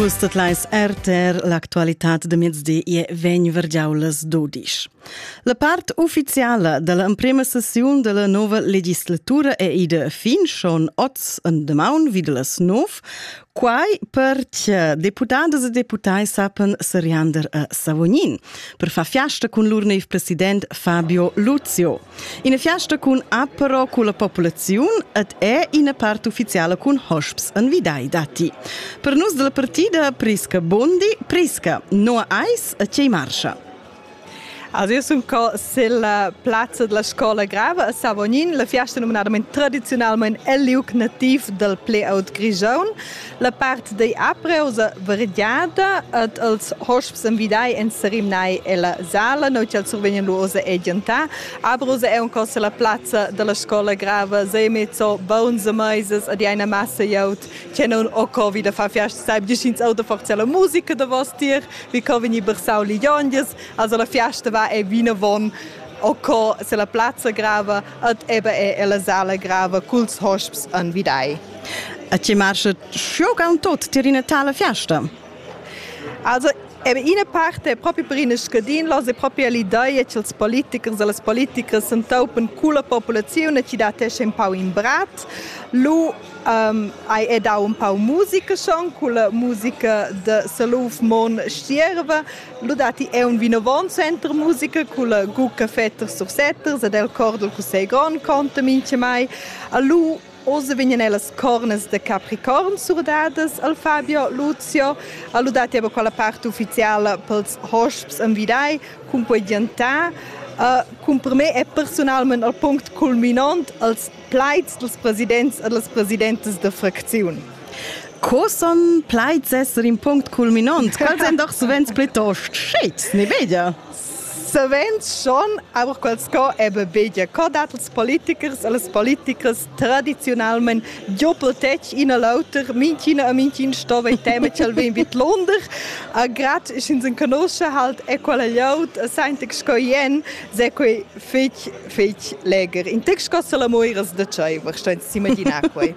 Vus tot leis RTR l'actualitat de mezdi e vegn vergiaulas dodisch. La part ufficiala della emprema sessiun della nova legislatura è ida fin schon oz en demaun vid las nov, quai perche deputadas e deputai sapen seriander a Savognin per far fiasta con lur neiv president Fabio Luzio. Ina fiasta cun ad però culla populaziun ed è ina part uffiziala cun hosps en vidai datti. Per nus dalla partida Prisca Bondi, Prisca, no ais e tgei marscha? Also io sun co silla plazza della scola grava a Savognin, la fiasta numnadament tradiziunalmente el liug nativ del Pleaut Grigion. La part da aprel sa variada ed els hosps envidai en serimnai ella sala, noi ch'el survegnan lu ossa e giantar. Abrusa è un costa la plazza dalla scola grava, sei mezzo bonze meisas ad eine Masse jaut, che non o co vi da far fiast saib ins auto forza la musica da vostir, vi co veni bersau li jonges, also la fiasta va e vina von o co se la plazza grava Ed eba è ella sala grava culs hosps anvidai. A ti marcha schiogan tot tir ina tala fiasta? Also, Ebe ina parte è proprio per ina scadinlos è proprio l'ideia ch'ils politichers e las politichers s'entaupan con la popolazione e ci dat esce un pau in brat. Lu um, hai è dau un pau musica schon con la musica de Saluf Mon Stierva, Lo datti è un vinavant center musica cun la Gucca Fetter sur Setters ed el cor dal Cussegl Grond conta mincha mai. A lu Oz vegnan ellas cornas da Capricorn surdadas al Fabio Luzio. Allo dati aber quella parte ufficiale pels hosps am vidai cun quei giantà. Uh, cun per me è personalment al punct culminant als plaids dels presidents e les presidentes de fracziun. Co son plaids esser in punct culminant? Quals èn doch savens plitost shit, ne bedia? Savens schon, aber quels co eben bedia. Co dat els politikers e les politikers traditionalment doppel tec ina l'auter, minchina a mincin sto bei tema ch'el vegn vid Londer. A grad is ins in conosce halt e quella llaut a saintig sco ien, se quei fetg fetg leger. In text co se la moiras da tscheiver, sto ins s'imaginar quei.